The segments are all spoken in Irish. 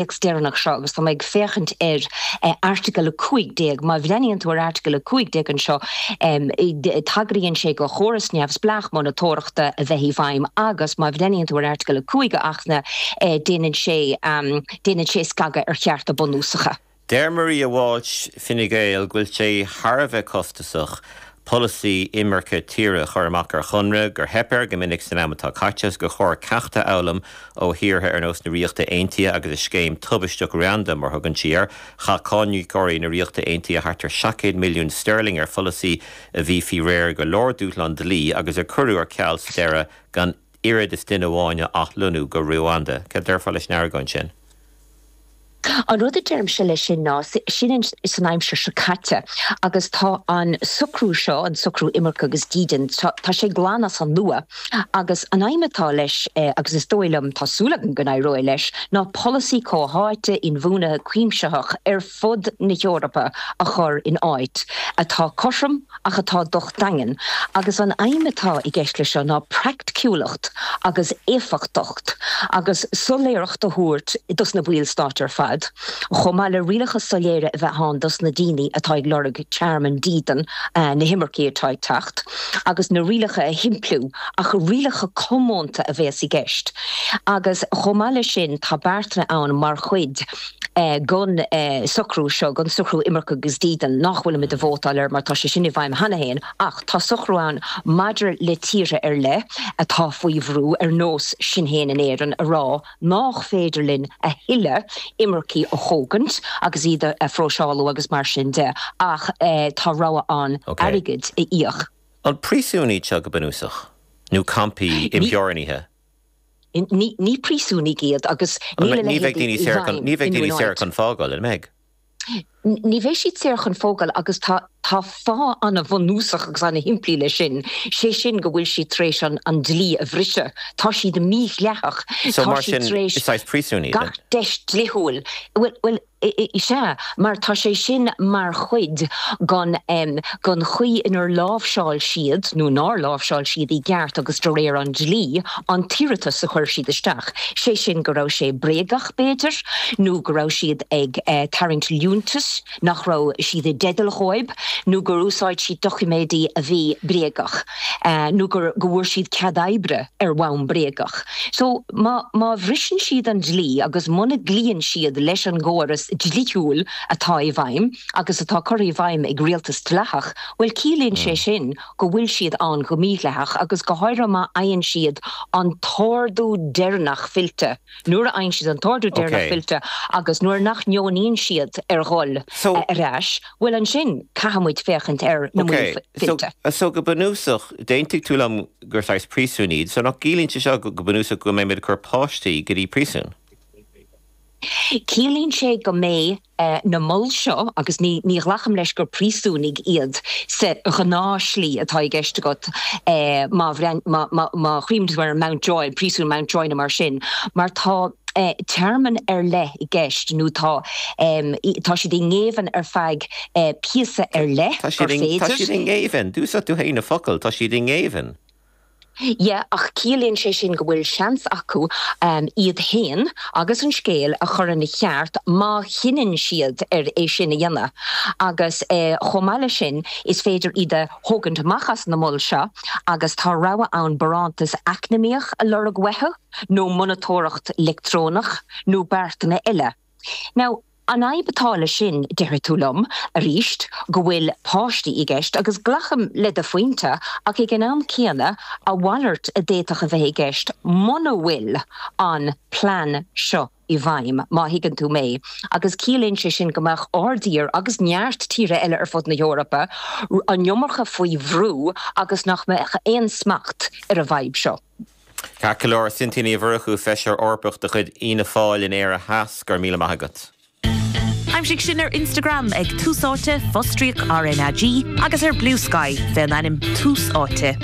théacs deireanach seo agus tá mé ag féachaint ar Airteagal 15. Má bhreathnaíonn tú ar Airteagal 15 anseo, tagraíonn sé do chóras neamhspleách monatóireachta a bheith i bhfeidhm agus, má bhreathnaíonn tú ar Airteagal 5 a hAcht na, déanann sé déanann sé scagadh ar chearta bunúsacha. Deir Maria Walsh, Fine Gael, go bhfuil sé thar a bheith costasach polasaí imirce tíre a chur amach ar chonradh, gur theip air go minic san am atá caite agus gur chóir ceacht a fhoghlaim ó thíortha ar nós na Ríochta Aontaithe agus a scéim tubaisteach Ruanda, mar a thugann sí air. Chaith cáiníocóirí na Ríochta Aontaithe thart ar seacht gcéad milliún steirling ar pholasaí a bhí faoi réir go leor dúshlán dlí agus a cuireadh ar ceal sa deireadh gan oiread is duine amháin a athlonnú go Ruanda. Céard a déarfá leis an argóint sin? An rud a deirimse leis sin ná, sin san aimsir seo caite agus tá an socrú seo, an socrú imirce agus dídean, tá sé glan as an nua agus an aidhm atá leis, agus is dóigh liom, tá súil agam go n-éireoidh leis, ná polasaí comhtháite, inbhuanaithe, cuimsitheach ar fud na hEorpa a chur in áit atá cothrom ach atá docht daingean agus an aidhm atá i gceist leis seo ná praiticiúlacht agus éifeachtacht agus soiléireacht a thabhairt dos na baill stáit ar fad chomh maith le rialacha soiléire a bheith ann dos na daoine atá ag lorg tearmainn, dídean, na himircigh atá ag teacht agus na rialacha a shimpliú ach rialacha comónta a bhéas i gceist agus chomh maith leis sin tá beartanna ann mar chuid den socrú seo, den socrú imirce agus dídean, nach bhfuilimid ag vótáil air mar tá sé sin i bhfeidhm cheana féin, ach tá socrú ann maidir le tíortha ar leith atá faoi bhrú, ar nós sinn féin in Éirinn, a rá nach féidir linn a thuilleadh imircigh a thógaint agus iad a phróiseálú agus mar sin de, ach tá rogha ann airgead a íoc. An príosúin iad seo go bunúsach? Nó campaí imtheorannaithe? Ní príosúin iad agus níl a leithéid i bhfeidhm. Ní bheidh daoine saor chun fágáil, an mbeidh? Ní bheidh siad saor chun fágáil agus tá fáth an-bhunúsach agus an-shimplí leis sin, sé sin go bhfuil siad tar éis an dlí a bhriseadh. Tá siad mídhleathach. Tá siad tar éis gach deis dlíthiúil. Is ea, mar tá sé sin mar chuid den chaoi inar láimhseáil siad, nó nár láimhseáil siad i gceart agus de réir an dlí, an t-iarratas a chuir siad isteach. Sé sin, go raibh sé bréagach, b'fhéidir, nó go raibh siad ag tarraingt liúntais nach raibh siad i dteideal dhóib, nó gur úsáid siad doiciméidí a bhí bréagach. nó gur, go bhfuair siad cead oibre ar bhonn bréagach. So, má, má bhriseann siad an dlí agus muna gcloíonn siad leis an gcóras dlíthiúil atá i bhfeidhm agus atá curtha i bhfeidhm ag rialtas dleathach, bhuel, ciallaíonn sé sin go bhfuil siad ann go mídhleathach agus go háirithe má fhaigheann siad an t-ordú deireanach fillte. nuair a fhaigheann siad an t-ordú deireanach fillte agus nuair nach ndeonaíonn siad ar dhul ar ais, bhuel ansin caithfidh muid féachaint ar na moil fillte. So go bunúsach, d'aontaigh tú liom gur saghas príosúin iad, so nach gciallaíonn sé seo go bunúsach go mbeidh muid ag cur páistí go dtí príosún? Ciallaíonn sé go mbeidh. é na moil seo agus ní ghlacaim leis gur príosúnaigh iad sa ghnáthshlí atá i gceist agat má chuimhnímid ar an Mountjoy, príosún Mountjoy nó mar sin, mar tá téarma ar leith i gceist nó tá tá siad i ngéibheann ar feadh píosa ar leith gur féidir. Tá siad i ngéibheann! D'úsáid tú féin an focal, tá siad i ngéibheann. Yeah, ach ciallaíonn sé sin go bhfuil seans acu iad féin agus an scéal a chur ina cheart má chinneann siad ar é sin a dhéanamh. Agus chomh maith leis sin, is féidir iad a thógaint amach as na moil seo agus tá rogha ann barántas eacnamaíoch a lorg uathu, nó monatóireacht leictreonach, nó beartanna eile. Now, an fhadhb atá leis sin, déarfaidh tú liom, aríst, go bhfuil páistí i gceist, agus glacaim le do phointe, ach ag an am céanna, a mhalairt a d'fhéadfadh a bheith i gceist muna bhfuil an plean seo i bhfeidhm, má thuigeann tú mé, agus ciallaíonn sé sin go mbeadh ár dtír, agus neart tíortha eile ar fud na hEorpa, an iomarca faoi bhrú agus nach mbeadh aon smacht ar an bhfadhb seo. Ceart go leor, a Cynthia Ní Mhurchú, Feisire Eorpach de chuid Fhianna Fáil in Éire Theas, go raibh míle maith agat. Aimsigh sinn ar Instagram ag Tús Áite, Fostríoc RnaG, agus ar Bluesky fé an ainm Tús Áite.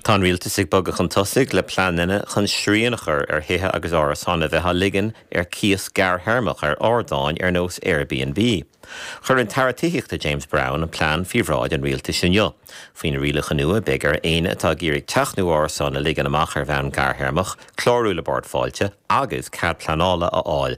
Tá an Rialtas ag bogadh chun tosaigh le pleananna chun srian a chur ar thithe agus árasáin a bheith á ligean ar cíos gearrthéarmach ar ardáin ar nós Airbnb. Chuir an tAire Tithíochta James Browne an plean faoi bhráid an Rialtais inniu. Faoi na rialacha nua, beidh ar éinne atá ag iarraidh teach nó árasán a ligean amach ar bhonn gearrthéarmach, clárú le Bord Fáilte agus cead pleanála a fháil.